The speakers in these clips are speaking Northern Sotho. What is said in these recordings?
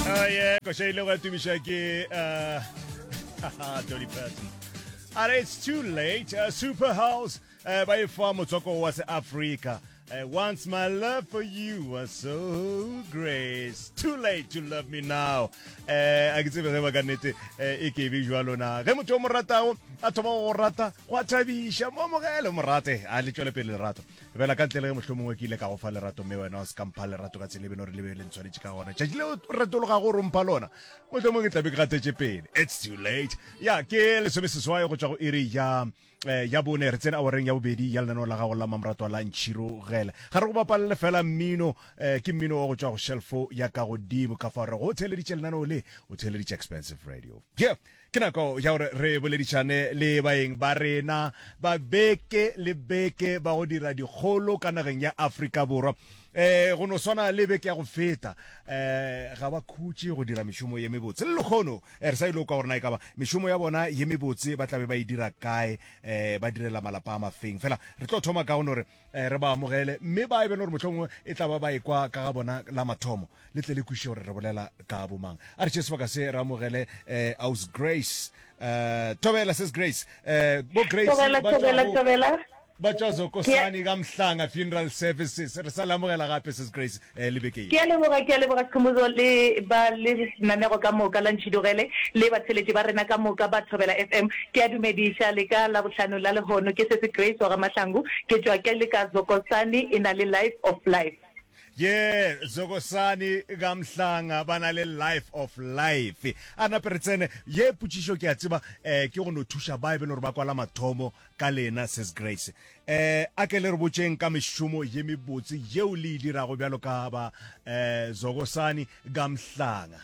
Aye, kwa shaile kwa tumisha ke uh, Dolly Parton. Are it's too late. Uh, Super House uh, by far motswako was Africa. Uh, once my love for you was so great. Too late to love me now. Eh a ke tsebe ge ba ka nete eh, e ke be jwalo na. Ge motho o mo ratago a thoma go go rata, go a thabisha. Mo mogele mo rate, a le tšwele pele lerato. Bela ka ntle le ge mohlomongwe ke ile ka go fa lerato mme wena o se ka mpha lerato ka tsela e beno re lebe le ntshwanetse ka gona tšatši leo o retologa go rompha lona mohlomongwe ke tlabe ke gatetše pele it's too late ya ke lesome seswai go tšwa go iri ya eh, ya bone re tsene awareng ya bobedi ya lenaneo la gago la mamratwa la ntšhirogele ga re go bapalele fela mmino eh, ke mmino wa go tšwa go shelfo ya ka godimo ka fa re go o theeleditše lenaneo le o theeleditše expensive radio yeah Ke nako ya gore re boledišane le baeng ba rena ba beke le beke ba go dira dikgolo ka nageng ya Afrika Borwa. Eh, go no swana le beke ya go feta eh, ga ba khutše go dira mešomo ye mebotse le lekgono eh, re sa ile kwa gore na e ka ba mešomo ya bona ye mebotse ba tlabe ba e dira kae eh, ba direla malapa a mafeng fela re tlo thoma ka go no re Eh, re ba amogele mme ba e bene gore mohlomongwe e tla ba ba e kwa ka ga bona la mathomo le tle le kwiše gore re bolela ka bomang a re tšhe sebaka se re amogele um aus grace um tobela ses grace um bo grace ba tswa zokosani ka mhlanga funeral services re sa le amogela gape ses grace le beke ye. Ke a leboga, ke a leboga Skhumbuzo le ba lenanego ka moka la Ntšhidogele le batheletši ba rena ka moka ba Thobela FM. Ke a dumediša le ka Labohlano la lehono. Ke Sesi Grace wa Gamahlangu, ke tšwa ke le ka Zokosani e na le Life of Life. Yee, Zokosani Gamhlanga ba na le Life of Life. A nape re tsene, ye potšišo ke a tseba eh ke go no thuša ba e be le gore ba kwala mathomo ka lena Ses Grace. Eh, a ke le re botšeng ka mešomo ye mebotse yeo le e dirago bjalo ka ba eh, zokosani ka mhlanga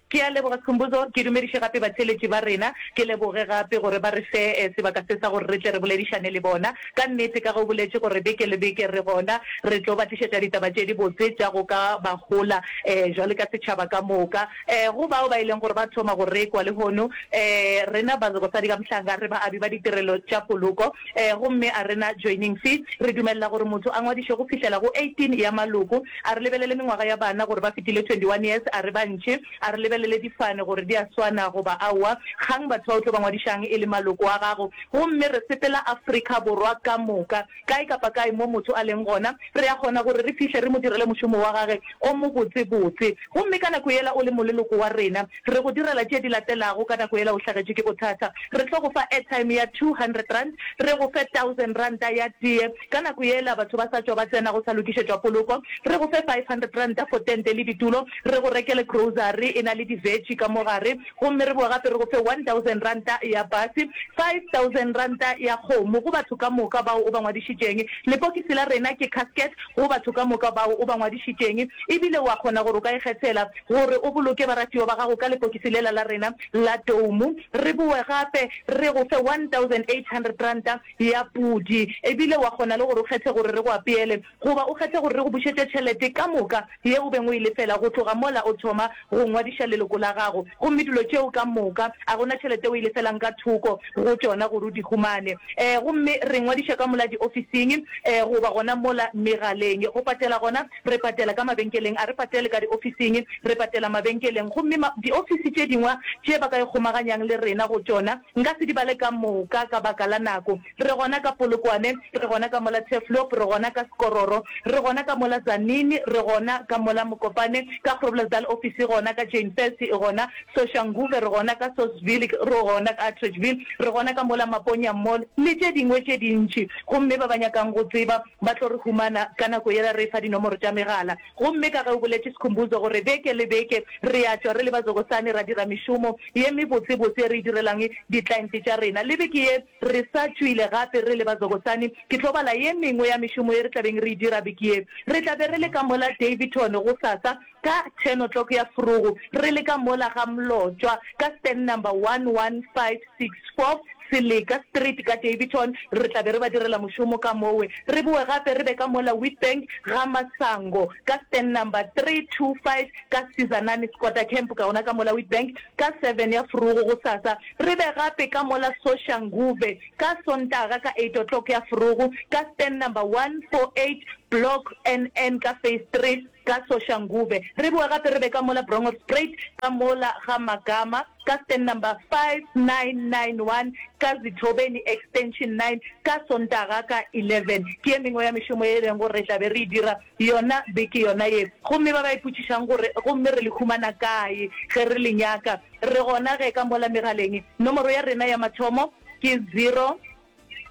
ke a leboga skhumbuzo ke dumediše gape batheletši ba rena ke leboge gape gore ba re fe eh, sebaka se sa gore re tle re boledišane le bona ka nnete ka ge o boletše gore beke le beke re gona re tlo ba tlišetša ditaba tše dibotse tša go ka ba gola um jwale ka setšhaba ka moka Ee, go bao ba e leng gore ba thoma go rekwa lehono, ee, rena Bazekosadi ka Mohlanga re baabi ba ditirelo tša poloko, ee, gomme a re na joining fee. Re dumelela gore motho a ngwadiše go fihlela go 18 ya maloko. A re lebelele mengwaga ya bana gore ba fetile 21 years, a re ba ntši. A re lebelele difane gore di a swana goba aowa. Kgang batho ba o tlo ba ngwadišang e le maloko a gago, gomme re sepela Afrika Borwa ka moka. Kae kapa kae mo motho a leng gona, re a kgona gore re fihle re mo direle mošomo wa gage o mobotsebotse. Gomme ka nako yela o le moleloko wa rena, re go direla tše di latelago. Ka nako yela o hlagetšwe ke bothata, re tlo go fa airtime ya two hundred rand, re go fe thousand ranta ya teye. Ka nako yela batho ba sa tšwa ba tsena go sa lokišetšwa poloko, re go fe five hundred ranta for tente le ditulo, re go rekele grocery e na le di-veggie ka mo gare, Gomme re boa gape re go fe one thousand ranta ya pase, five thousand ranta ya kgomo, go batho ka moka bao o ba ngwadišitšeng. Lepokisi la rena ke casket go batho ka moka bao o ba ngwadišitšeng. Ebile o a kgona gore o ka ikgethela gore o boloke baratiwa ba gago ka lepokisi lela la rena la doumo. Re boe gape re go fe one thousand eight hundred ranta ya pudi. Ebile o a kgona le gore o kgethe gore re go apeele Goba o kgethe gore re go bušetše tšhelete ka moka ye o beng o e lefela go tloga mola o thoma go ngwadiša leloko la gago. Gomme dilo tšeo ka moka a go na tšhelete o e lefelang ka thoko go tšona gore o di humane. Ee, gomme re ngwadiša ka mola diofising goba gona mola megaleng. Go patela gona, re patela ka mabenkeleng. A re patele ka diofising, re patela mabenkeleng. Gomme ma, diofisi tše dingwa tše ba ka ikgomaganyang le rena go tšona, nka se di bale ka moka ka baka la nako. Re gona ka Polokwane, re gona ka mola Turfloop, re gona ka Skororo, re gona ka mola Tzaneen, re gona ka mola Mokopane, ka Groblersdal ofisi e gona, ka Jane Thirty e gona, Soshanguve, re gona ka Sosville, re gona ka Atteridgeville, re gona ka mola Maponya Mall, le tše dingwe tše dintši. Gomme ba ba nyakang go tseba ba tlo re humana ka nako yela re efa dinomoro tša megala. Gomme ka ge o boletše Skhumbuzo gore beke le beke re ya tšwa re le bazokosane ra dira mešomo ye mebotsebotse e re e direlang di-client tša rena, le beke ye, Re sa tšwile gape re le ba Zokosani, ke tlo bala ye mengwe ya mešomo ye re tla beng re e dira beke ye. Re tla be re le ka mola Daveyton gosasa ka ten o'clock ya forogo, re le ka mola ga Mlotšwa ka stand number 11564 Seleka Street ka Daveyton. Re tla be re ba direla mošomo ka mowe, re bowe gape re be ka mola Witbank ga Masango ka stand number 325 ka Sizanani Squatter Camp, ka gona ka mola Witbank ka seven ya forogo gosasa. Re be gape ka mola Soshanguve ka Sontaga ka eight o'clock ya forogo ka stand number 148, block NN ka phase three ka Soshanguve. Re boe gape re be ka mola Bronghorstspruit ka mola ga Magama ka stand number 5991 ka Zithobeni extension nine ka Sontaga ka eleven. Ke ye mengwe ya mešomo ye e lego gore re tla be re e dira. Yona beke yona ye. Gomme ba ba ipotšišang gore, Gomme re le humana kae ge re le nyaka? Re gona ge ka mola megaleng. Nomoro ya rena ya mathomo ke zero,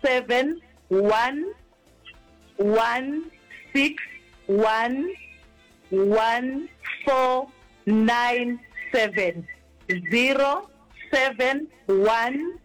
seven, one, one, six, one, one, four, nine, seven, zero, seven, one,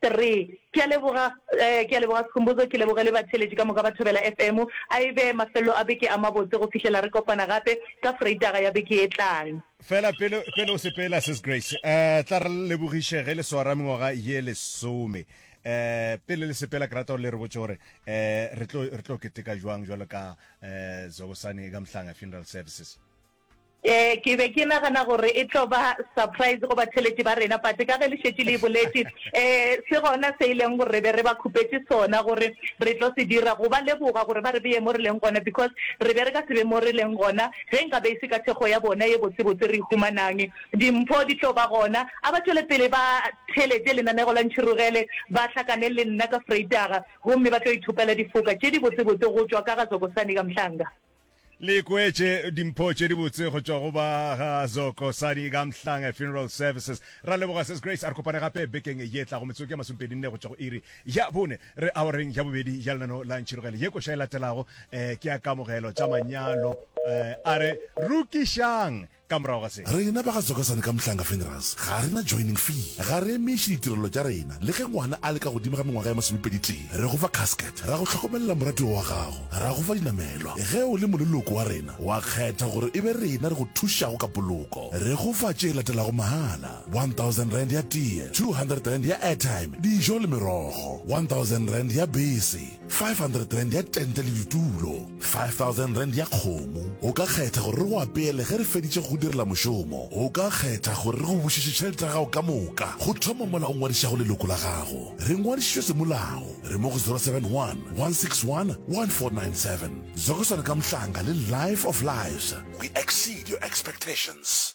Three. Ke a leboga, eh, ke a leboga Sikhumbuzo, ke leboge le batheeletši ka moka ba Thobela FM. A e be mafelelo a beke a mabotse go fihlela re kopana gape ka Freitaga ya beke e tlang. Fela pele, pele o sepela Sis Grace, eh, tla re lebogiše ge le swara mengwaga ye lesome. Eh, pele le sepela ke rata gore le re botše gore eh, re tlo, re tlo keteka jwang jwalo ka eh, Zobosane Gamhlanga Funeral Services. Ee, ke be ke nagana gore e tlo ba surprise go batheletši ba rena, but ka ge le šetše le e boletše, um se gona se e leng gore re be re ba khupetše sona gore re tlo se dira, go ba leboga gore ba re beye mo re leng gona, because re be re ka se be mo re leng gona ge nka be e se ka thekgo ya bona ye botsebotse re e humanang. Dimpho di tlo ba gona. A ba tšwele pele ba theletše lenanego la Ntšhirogele, ba hlakane le nna ka Freitaga, gomme ba tlo ithopela difoka tše dibotsebotse go tšwa ka ga Zokosani ka Mhlanga. Le kweetše dimpho tše dibotse go tšwa go ba ga Zoko Sani ka Mhlanga Funeral Services. Ra leboga Ses Grace, a re kopane gape bekeng ye tlago metsotso ya masompedi nne go tšwa go iri ya bone. Re awareng ya bobedi ya lenano la Ntšhirogele. Ye koša e latelago ke ya kamogelo tša manyalo. A re rukišang! ka morago ga se. Rena ba ga Zokosane ka Mhlanga Funerals ga re na joining fee, ga re emeše ditirelo tša rena. Le ge ngwana a le ka godimo ga mengwaga ya masomepedi-tee, re go fa casket, ra go hlokomelela moratiwa wa gago, ra go fa dinamelwa. Ge o le moleloko wa rena, wa kgetha gore e be rena re go thušago ka poloko, re go fa tše latelago mahala, R1,000 ya tee, R200 ya airtime, dijo le merogo, R1,000 ya bese, R500 ya tente le ditulo. 5000 rand ya kgomo. O ka kgetha gore re go apeele ge re feditše go go direla mošomo. O ka kgetha gore re go bušetše tšhelete ya gago ka moka. Go thoma mola o ngwadišago leloko la gago, re ngwadišitšwe semolao. Re mo go 071 161 1497. Zokosana Kamhlanga le Life of Lives. We exceed your expectations.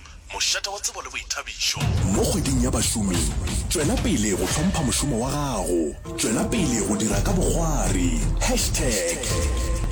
mošate wa tsebo le boithabišo. Mo Kgweding ya Bašomi, tšwela pele go hlompha mošomo wa gago. Tšwela pele go dira ka bokgwari. Hashtag.